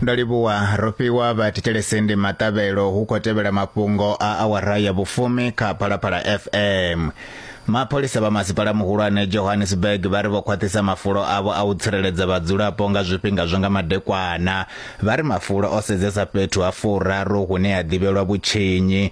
ndo livhuwa ro fhiwa vha thetshelese ndi maṱavhelo hu khou tevhela mafhungo a awara ya vhufumi kha phalaphala fm mapholisa vha masipala muhulwane johannesburg vha ri vho khwaṱhisa mafulo avho a u tsireledza vhadzulapo nga zwifhinga zwa nga madekwana vha ri mafulo o sedzesa fhethu ha furaru hune ha ḓivhelwa vhutshinyi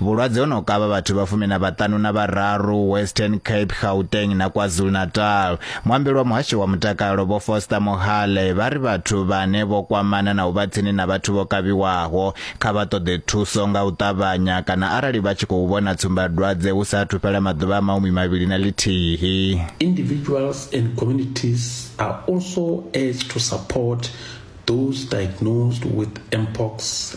Vhulwadze ho no kavha vhathu vha fumi na vhaṱanu na vhararu Western Cape, Gauteng na KwaZulu-Natal. Muambeli wa muhasho wa mutakalo Vho Foster Mohale vha ri vhathu vhane vho kwamana na u vha tsini na vhathu vho kavhiwaho kha vha ṱoḓe thuso nga u ṱavhanya kana arali vha tshi khou vhona tsumbadwadze hu sa athu fhela maḓuvha a mahumi mavhili na ḽithihi. Individuals and communities are also urged to support those diagnosed with mpox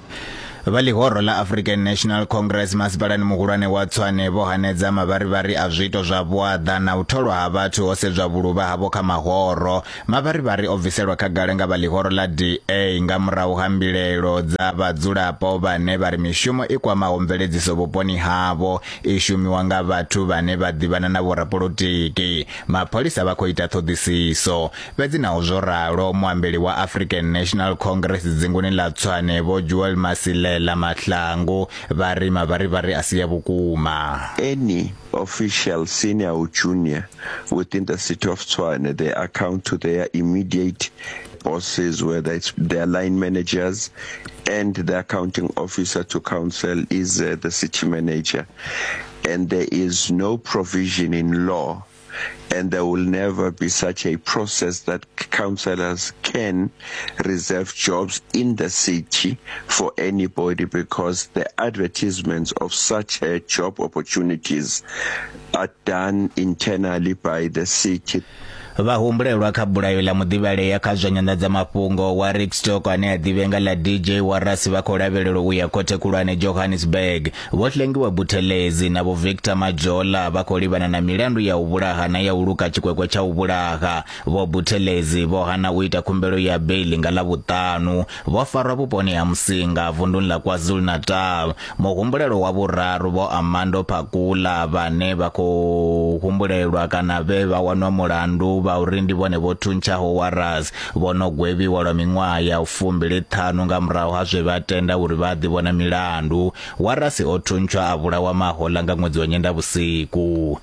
vha ḽihoro ḽa african national congress masipalani muhulwane wa tswane vho hanedza mavharivhari a zwiito zwa vhuaḓa na u tholwa ha vhathu ho sedzwa vhuluvha havho kha mahoro mavharivhari o bviselwa khagala nga vha ḽihoro ḽa da nga murahu ha mbilaelo dza vhadzulapo vhane vha ri mishumo i kwamaho mveledziso vhuponi havho i shumiwa nga vhathu vhane vha ḓivhana na vhorapolotiki mapholisa vha khou ita ṱhoḓisiso Fhedzi naho zwo ralo, muambeli wa African National Congress dzinguni ḽa Tshwane Vho Joel Masilela Mahlangu vha ri mavharivhari a si ya vhukuma. Any official, senior or junior, within the city of Tshwane, they account to their immediate bosses, whether it's their line managers and the accounting officer to council is uh, the city manager. And there is no provision in law and there will never be such a process that councillors can reserve jobs in the city for anybody because the advertisements of such uh, job opportunities are done internally by the city. vhahumbulelwa kha bulayo ḽa muḓivhalea kha zwa nyanḓadzamafhungo wa rickstock ane a ḓivhea nga ḽa dj warasi vha khou lavhelelwa u ya khothe khulwane johannesburg Vho Hlengiwa Buthelezi na Vho Victor Majola vha khou livhana na milandu ya u vhulaha na ya u luka tshikwekwe tsha u vhulaha. Vho Buthelezi vho hana u ita khumbelo ya beiḽi nga Ḽavhuṱanu. Vho farwa vhuponi ha Musinga, vunḓuni ḽa KwaZulu-Natal. Muhumbulelwa wa vhuraru Vho Armando Phakula vhane vha khou humbulelwa kana vhe vha wanwa mulandu vha uri ndi vhone vho thuntshaho Warras vho no gwevhiwa lwa miṅwaha ya fumbili ṱhanu nga murahu ha zwe vha tenda uri vha a ḓivhona milandu. Warasi o thuntshwa a vhulawa mahoḽa nga ṅwedzi wa Nyendavhusiku.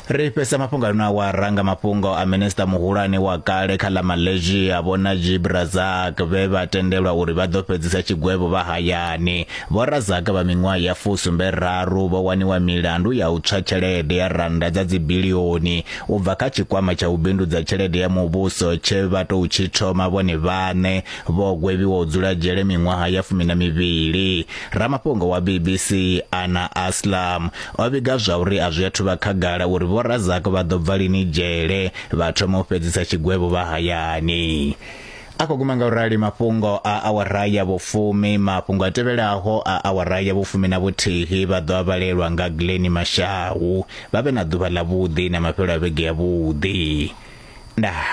Ri fhesa mafhungo ano awara nga mafhungo a minista muhulwane wa kale kha ḽa Malaysia vho Najib Razak vhe vha tendelwa uri vha ḓo fhedzisa tshigwevho vha hayani. Vho Razak vha miṅwaha ya fusumbe raru vho waniwa milandu ya u tswa tshelede ya rannda dza dzibilioni u bva kha tshikwama tsha u bindudza tshelede ya muvhuso tshe vha tou tshi thoma vhone vhaṋe vho gwevhiwa u dzula dzhele miṅwaha ya fumi na mivhili ramafhungo wa bbc ana aslam o vhiga zwa uri a zwi athu vha khagala uri vhorazak vha ḓo bva lini dzhele vha thoma u fhedzisa tshigwevho vha hayani a khou guma nga u rali mafhungo a awara ya vhufumi mafhungo a tevhelaho a awara ya vhufumi na vhuthihi vha ḓo a vhalelwa nga glen mashau vha vhe na ḓuvha ḽa vhuḓi na mafhelo a vhege ya vhuḓi ndaa